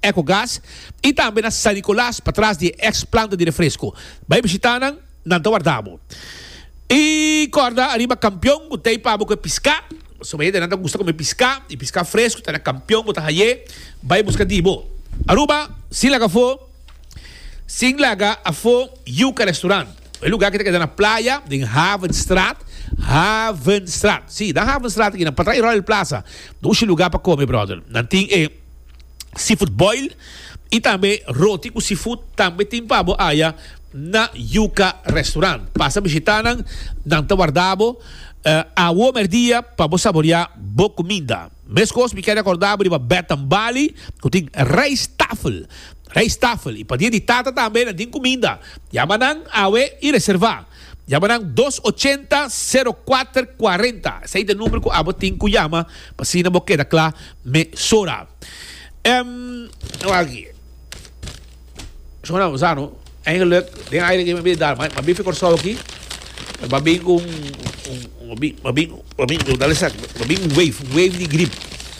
Ecogas y tambe na San Nicolas pa tras di e ex planta di refresco. Bay bishita nan, nan ta warda bo. Y corda ariba Campeon cu ta epa bo cu e pisca, pasobra hay hende nan ta gusta come pisca y pisca fresco ta na Campeon bo ta haye, bay busca di bo. Aruba, sin laga afo, sin laga afo Yuca Restaurant. E lugar aki ta keda na playa den Havenstraat, Havenstraat, si, nan Havenstraat aki nan pa tras e Royal Plaza, ta un shi lugar pa come brother. Nan tin e. seafood boil y tambe roti cu seafood tambe tin pa bo aya na Yuca Restaurant. Pasa bishita nan, nan ta warda bo awo merdia pa bo saboria bo cuminda. Mescos mi kere acorda bo riba Bath and Bali cu tin rijsttafel, rijsttafel, y pa dia di tata tambe nan tin cuminda. Yama nan awe y reserva. Yama nan dos ochenta, sero kuater kuarenta. Esey ta e number cu abo tin cu yama pa asina bo keda cla. mesora. Em wak aki. Shona ku sa no. Eigenlijk den aire ke mi a bin dar, mi a bin fi Kòrsou aki, mi a bin ku un, mi a bin ku dal esaki, mi a bin ku un wave, un wave di grip.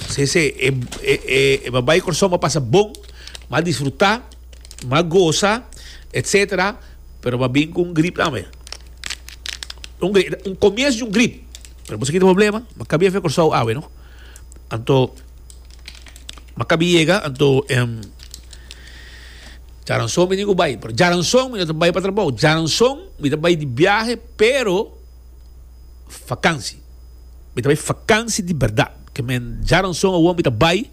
Si si e babay Kòrsou mi a pasa bon, mi a disfrutá, mi a gosa etsetera, pero mi a bin ku un grip tambe. Un komiensu di un grip. Pero mi a bin ku un problema, mi a kabia fi Kòrsou awe no. Anto makabi yega anto em Jaranson mi tin ku bai pero Jaranson mi no ta bai pa trabou Jaranson mi ta bai di biahe pero fakansi mi ta bai fakansi di bèrdat ke men Jaranson awor mi ta bai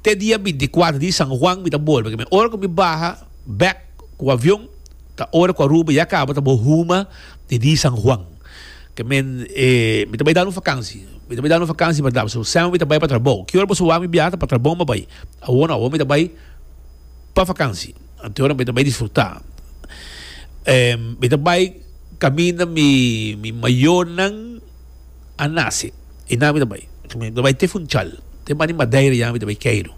te dia binti kuater di San Juan mi ta bolbe ke men ora ku mi baha bèk ku avion Ta ora cu Aruba ya caba ta bo huma di di San Juan. Ke men e mi ta bay danu vakansi. Mi ta bay danu vakansi bardad pasobra sèmen mi ta bay pa trabou. Ki ora boso wak mi biaha ta pa trabou mi a bay. Awor no, awor mi ta bay pa vakansi. Anto ora mi ta bay disfrutá. Mi ta bay caminda mi mi mayornan a nace. I nan mi ta bay. Mi ta bay te Funchal. Te banda di Madeira ya mi ta bay Cairo.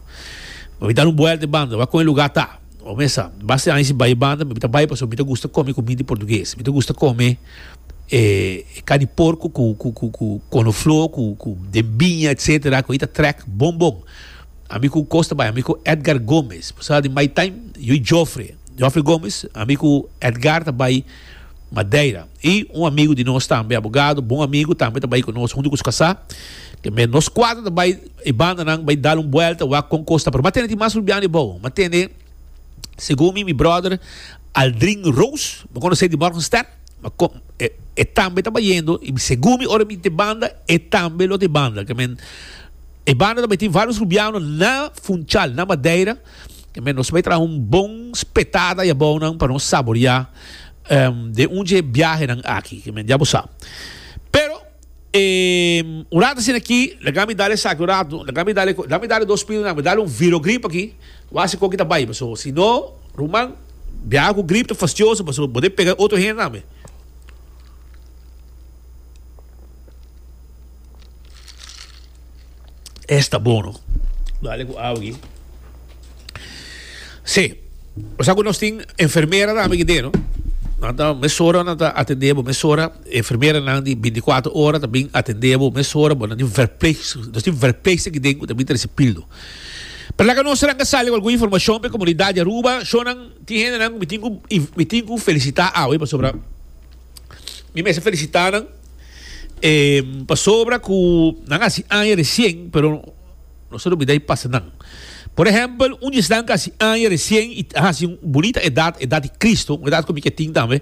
Mi a bay danu un buelta e banda wak con e lugá ta. Bo mester sa, basta di aña si bai banda, mi ta bai pasobra mi ta gusta kome kumida di portugues. Mi ta gusta kome e karni di porku ku ku konofló ku ku den biña etcetera ku ei ta trèk bon bon. Ami ku kos ta bai? Ami ku Edgar Gomes, bo sa di mai time? Yu i Jofre, Jofre Gomes, ami ku Edgar ta bai Madeira. I un amigu di nos tambe, abogado, bon amigu, tambe ta bai ku nos huntu ku su kasá. Te mester nos kuater ta bai e bandanan bai dal un buelta wak kon kos ta. Pero m'a tende tin mas rumbian di bou. M'a tende, segun mi, mi bròder Aldrin Roos, bo konos'é di Morgenstern? M'a kon, e, e tambe ta bayendo i segun mi ora mi ta e banda e tambe lo ta e banda. Ke men, e banda ta bai tin vários rumbiano na Funchal, na Madeira. Tambe nos bai traha un bon spetada di abounan pa nos saboria den un dje biahenan aki, ke men dia bo sa. Pero, un rat asina aki, laga mi dal esaki un ratu, laga mi dal e, laga mi dal e dos pirinan, mi dal un Virogrip aki, bo a hasi kon kita bai, paso si no, ruman, biaha ku grip ta fastioso, paso bo deb pega otro hende tambe. Esta bono. Dale ku awi. Se. O sa ku nos tin enfermera tambe ki deno. Nan ta mesora nan ta atende bo mesora. Enfermera nan di 24 ora ta bin atende bo mesora. Bo nan tin verpleegster. Nos tin verpleegster ki den ku ta bin trese pildo. Perlaka nos nan ka sali ku algun informashon pa e komunidat di Aruba. Shon nan tin hende nan ku mi tin ku mi tin ku felisita awe pasobra mi mester felisita nan. E pasobra cu nan haci aña recien, pero nos ta olbida e pasanan. Por ehempel, un djesnan cu haci aña recien y a haci un bunita edad, edad di Cristo, un edad cu mi ke tin tambe,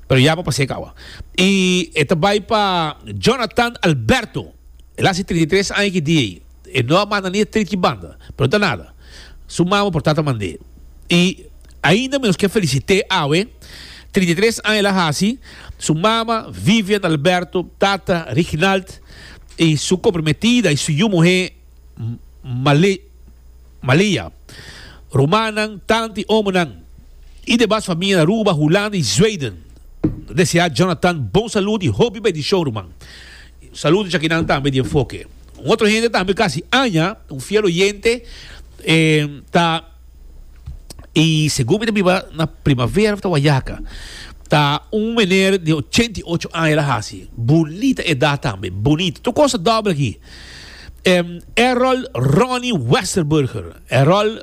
pero ya pa pas'é kawa. Y e ta bai pa Jonathan Alberto. El a haci trinta i tres aña ki dia ei. E no a manda ni e trit ki banda, pero no ta nada. Su mama por tata mand'é. I ainda menos ke felisit'é awe, trinta i tres aña el a hasi, su mama, Vivian Alberto, tata, Riginald, i su komprometida i su yu muhé, Male, Maleya, rumannan, tanta i omonan, i de bas famia na Aruba, Hulanda i Zweiden, deseá Jonathan bon salud i hopi bendishon, ruman. Saludo djakinan tambe di enfoke. Un otro hende tambe casi aña, un fiel oyente, eh, ta, y segun mi ta biba na primavera of ta wayaca, ta un meneer di ochenta y ocho aña la haci, bunita edad tambe, bunita, tur cosa doble aki, em, Errold Ronnie Westerburger, Errold.